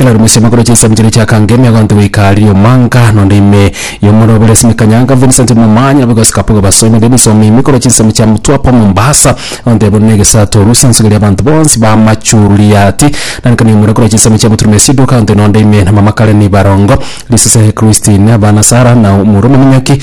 Elaruma ase amakoro chia isemi chiria chiakange ime agonte goika riria omwanka nonde ime y'omoro obere ase mikanyanga Vincent Momanyi nabo igosika boga basoe nonde emisomba ime korwa chinsemo chia Mtwapa Mombasa agonte buna egesato orusia ensugo eria abanto bonsi ba Machuriati nainka na imura korwa chinsemo chia Buturuma Esiduka agonte nonde ime na mama Karen Barongo Lisese Christine abana Sarah na omorwa omominyoki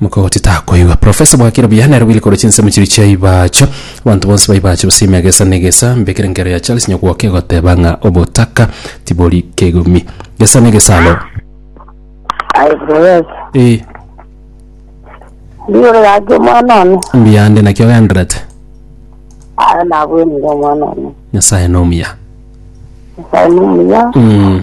Mokogoti takoigwa. Profesa bwakire buya nere bwire korwa chinsemo chiria chia Ibacho. Abanto bonsi ba Ibacho basiime egesa na egesa. Mbekere enkero ya Charles Nyagwoka egoteba ng'a obotaka tibori kegumi. Gesa na egesa alo. Aibo yes. Eh, Ndiyo gaki omwana one. mbuya ande naki ogenderete. Aye nabwenire omwana one. Nyasaye nomuya. Nyasaye nomuya. Mm.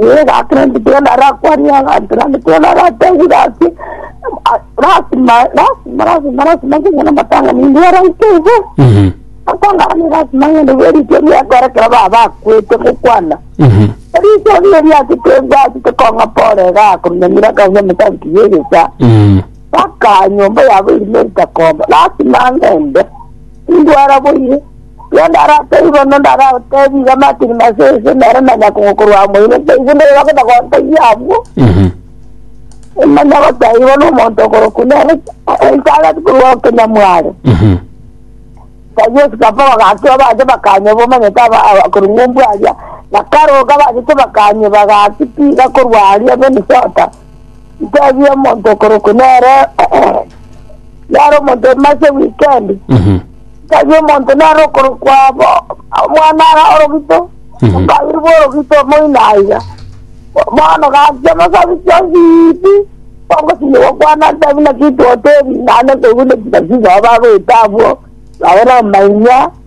Ee, gaki naki Tony arakwanie abanto, naende Tony aratebie gaki, "Ah, lasima, lasima, lasima, lasima nkonye namatang'ani inwe abaito iga. Mhm. Akong'ara ni lasima ng'ende bwe riicho riakore ekero baba bakwete gokwana. Mhm. Riicho riria riache tebwati tokong'a pore iga akorunyamira akauya emetanki y'egecha. Mhm. Baka nyomba yabo erimo ritakomba. Lasima ng'ende. Indwara boire. Igo ndaratebi bono, ndaragotebi iga Martin Masese, nere na nyakogo korwa amo ime, ntaigwe nere bagenda gontebia abwo, Mhm. ng'a nyagotebiwa nomonto okorokwa nere Elisabeti korwa o Kenyamware. Mhm. Ntaigwe esikapa bagakira bache bakanywa bomanyete aba- aba- korwa ng'umbu aria, na karoka bachete bakanywa bagatiga korwa aria Minnesota. Ntabia omonto okorokwa nere nare omonto emase weekend Mhm. ntabia omonto nare okorokwa bo- omwana ara orogito Mhm. omobiri bw'orogito moino aiga bono gachia amasabi chionsi pi bongosinyia gokwana ntabi naki totebia naende toigwe naki naki nabo bagoeta abwo nabo na omainyia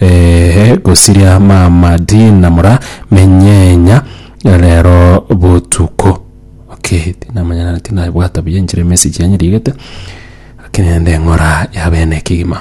Eeh gosiria mama Dina mora menyenya rero botuko okay tinamanya nare tinabwata buya enchera emessage yanyu rigete lakini rende ng'ora ya bene ekegima.